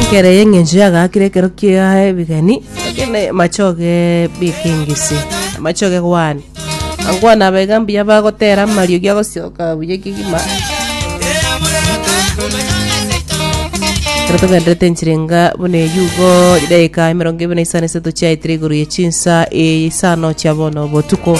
Ekero eye eng'encho yagakire ekero kia ebegeni ekene machoge bikengisi machoge gwane angwana aba iga mbuya bagotera amariogi agosioka buya ekegima ekero togenderete enchera enga buna eyio igo edaika emerongo ebere na isano na isato chiaetire igoro ya chinsa isano chia bono botuko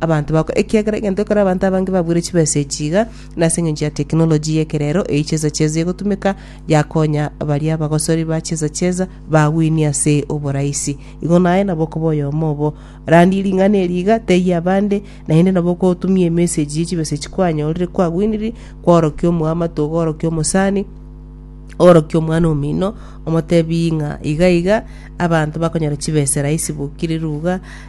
abanto bako, ekiagera egento ekore abanto abange babuire chibesa echi iga, nase engencho ya technology y'ekerero eyi chesa chesa egotumeka, yakonya baria abagosori ba chesa chesa bagwinie ase oboraisi. Igo naye nabo okoba oyomo obo randie ring'ana eri iga, teyia abande, naende nabo okotumia emessage ye chibesa echi kwanyorire, kwagwiniri, kwaorokia omoamate, ogaorokia omosani, oorokia omwana omino, omotebi ng'a iga iga, abanto bakonyora chibesa raisi bokire ruga,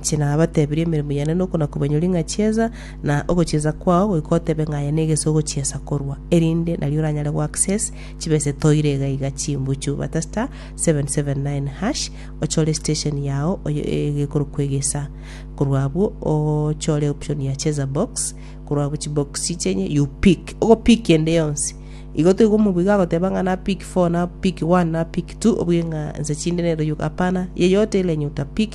Inche nabatebirie emeremo yane noko nakobanyora ing'a chiesa, na ogochiesa kwao goika otebe ng'a aye negese ogochiesa korwa, erinde nario oranyare goaccess chibesa etoire iga iga chimbuchu. Batasta 779# ochore station yao oye egekorokwa egesa, korwa abwo ochore option ya cheza box, korwa abwo chibox chenye you pick, ogo pick ende yonsi. Igo toigo omobu iga agoteba ng'a na pick four, na pick one, na pick two, obwe ng'a nse chinde nero yoka hapana, yeyote ile enye ota pick